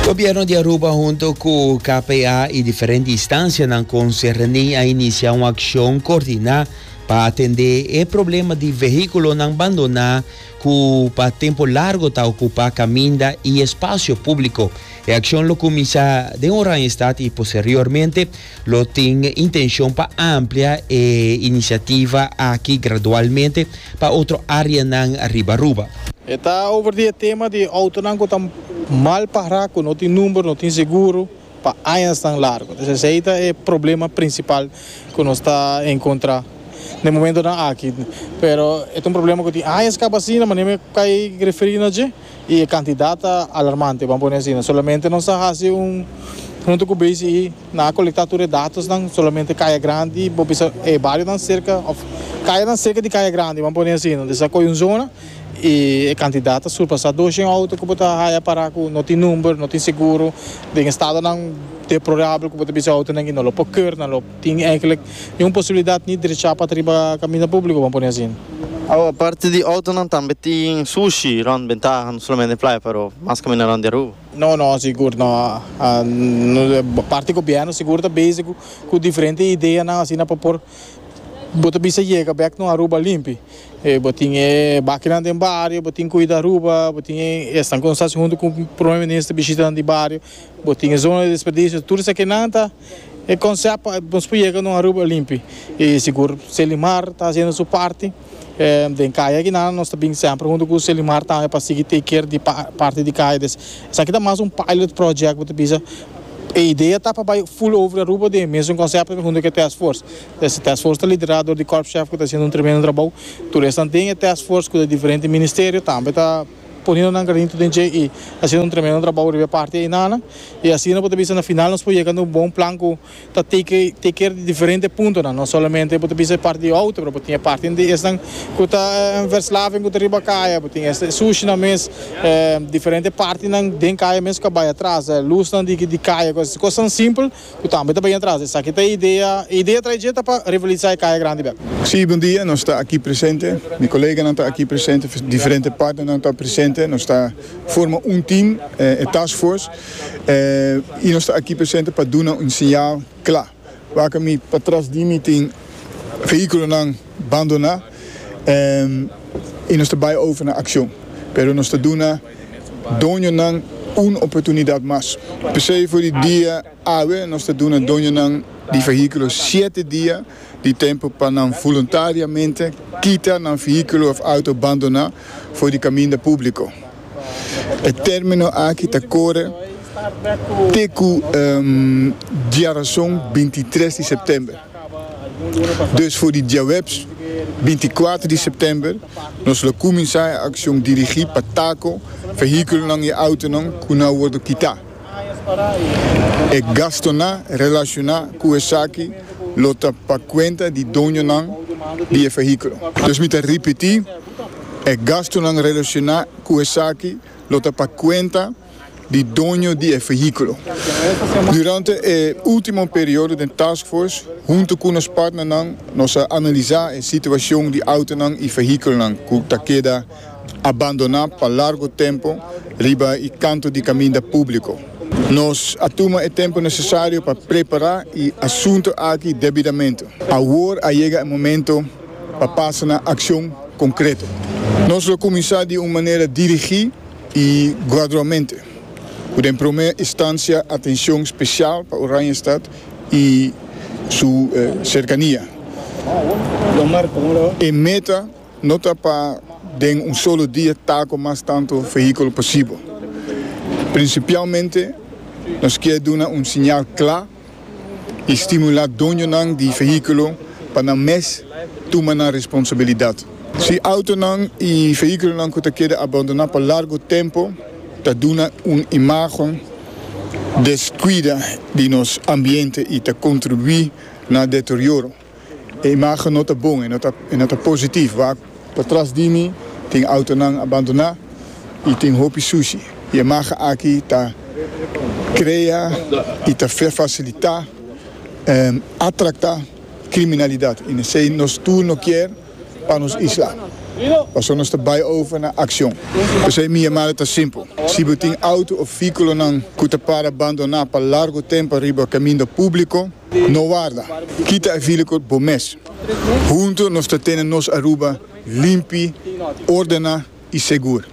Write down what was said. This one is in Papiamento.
Gobierno di Aruba hunto cu KPA y diferente instancianan concerni a inicia un accion coordina pa atende e problema di vehiculonan bandona cu pa tempo largo ta ocupa caminda y espacio publico. E accion lo cuminsa den Oranjestad y posteriormente Lo tin intencion pa amplia e iniciativa aki gradualmente pa otro areanan riba Aruba. E ta over di e tema di autonan cu ta mal pará, cu no tin number, no tin seguro pa añasnan largo. Entonces esei ta e problema principal cu nos ta encontra den momentonan aki. Pero e ta un problema cu tin añas caba asina, manera mi a cay referi na dje. y e cantidad ta alarmante ban pone asina solamente nos a haci un hunto cu BCE nan a colecta tur e datosnan solamente Caya Grandi bo bisa e barionan cerca of cayanan cerca di Caya Grandi ban pone asina nos a coge un zona y e cantidad ta surpasa doshen auto cu bo ta haya para cu no tin number no tin seguro den estadonan deplorable cu bo ta bisa e autonan que no lo por keur nan lo Tin eigenlijk ni un posibilidat ni drecha pat riba kaminda publiko, bo a pone asin. Awa, parti di outonan tambe tin sushi rond bentaha, no solamente playa pero mas kaminda rond di Aruba. No, no, sigur no. Parti gobièrnu sigur ta bezig ku diferente ideanan asina pa por bo ta bisa yega bèk no Aruba limpi. Bo tin e bakinan den bario, bo tin Kuida Aruba, bo tin esnan ku nos hasi huntu ku Prome Minister bishitanan di bario, bo tin e zona di desperdisio, tur esaki nan ta. E konsèp pa nos por yega na un Aruba limpi i sigur. Selimar ta hasiendo su parti den kaya akinan. Nos ta bin semper huntu ku Selimar tambe pa sigui take care di parti di kaya. Des esaki ta mas un pilot project bo ta bisa. E idea ta pa bai full over Aruba den e mesun konsèp huntu ku e task force. Des e task force ta liderá dor di Corp Chef ku ta hasiendo un tremendo trabou. Tur esnan den e task force ku ta di diferente ministerio tambe ta. Poniendo nan granito den dje y haciendo un tremendo trabao riba e parti einanan. Y asina bo ta bisa na final nos por yega na un bon plan cu ta take take care di diferente puntonan. No solamente bo ta bisa e parti di auto pero bo tin e parti di esnan cu ta en Verslaving cu ta riba caya, bo tin este sushinan mes, eh, diferente partinan den caya mes cu a bay atras, eh, lusnan di caya, cosnan simpel. Cu tambe ta bay atras. Esaki ta e idea. E idea trae dje ta pa revitaliza e caya grandi bek. Sí, bon dia. Nos ta aki presente. Mi coleganan ta aki presente. Diferente partnernan ta presente. Nos ta forma un team, e task force. Y nos ta aki presente pa duna un señal cla. Wak mi patras di mi tin vehiculonan bandona. Y nos ta bay over na accion. Pero nos ta duna. Doñonan un oportunidat mas. P'esei for di dia awe nos ta duna doñonan di fehíkulo shete dia di tempu pa nan voluntariamente kita nan fehíkulo òf outo bandoná for di kaminda públiko. E término aki ta kore te ku diarason bintitres di sèptèmber. Dus for di diahuebs binti kuater di sèptèmber nos lo kuminsá e akshon dirigí pa tako vehíkulonan i outonan ku na wòrdu kitá. E gastunan relashoná ku esaki lo ta pa kuenta di doñonan di e vehíkulo. Dus mi ta ripití, e gastunan relashoná ku esaki lo ta pa kuenta di doño di e vehiculo. Durante e ultimo periodo den taskforce, hunto cu nos partnernan, nos a analisa e situacion di autonan y vehiculonan cu ta keda abandona pa largo tempo riba e canto di caminda publico. Nos a tuma e tempo necesario pa prepara e asunto aki debidamente. Awor a yega e momento pa pasa na accion concreto. Nos lo cuminsa di un manera dirigi. I gradualmente, cu den prome instancia atencion special pa Oranjestad i su cercania. E meta no ta pa den un solo dia ta cu mas tanto vehiculo posibel. Principialmente nos kier duna un siñal cla. i stimulá doñonan di vehíkulo pa nan mes tuma nan responsabilidat. Si outonan i vehíkulonan ku ta keda abandoná pa largu tempu ta duna un imágen deskuida di nos ambiente i ta kontribuí na deterioro, E imagen no ta bon, e no ta positief wak. Patras di mi tin autonan abandoná i tin hopi sushi. E imagen aki ta krea i ta fasilitá atraktá kriminalidat i nesei nos tur no kier pa nos isla. Paso nos ta bai over na akshon. P'esei mi yamada ta simpel, si bo tin auto of vehikulonan ku ta para abandoná pa largu tempu riba kaminda públiko, No warda, kita e vilikot bo mes. Huntu nos ta tene nos Aruba limpi, ordena i segur.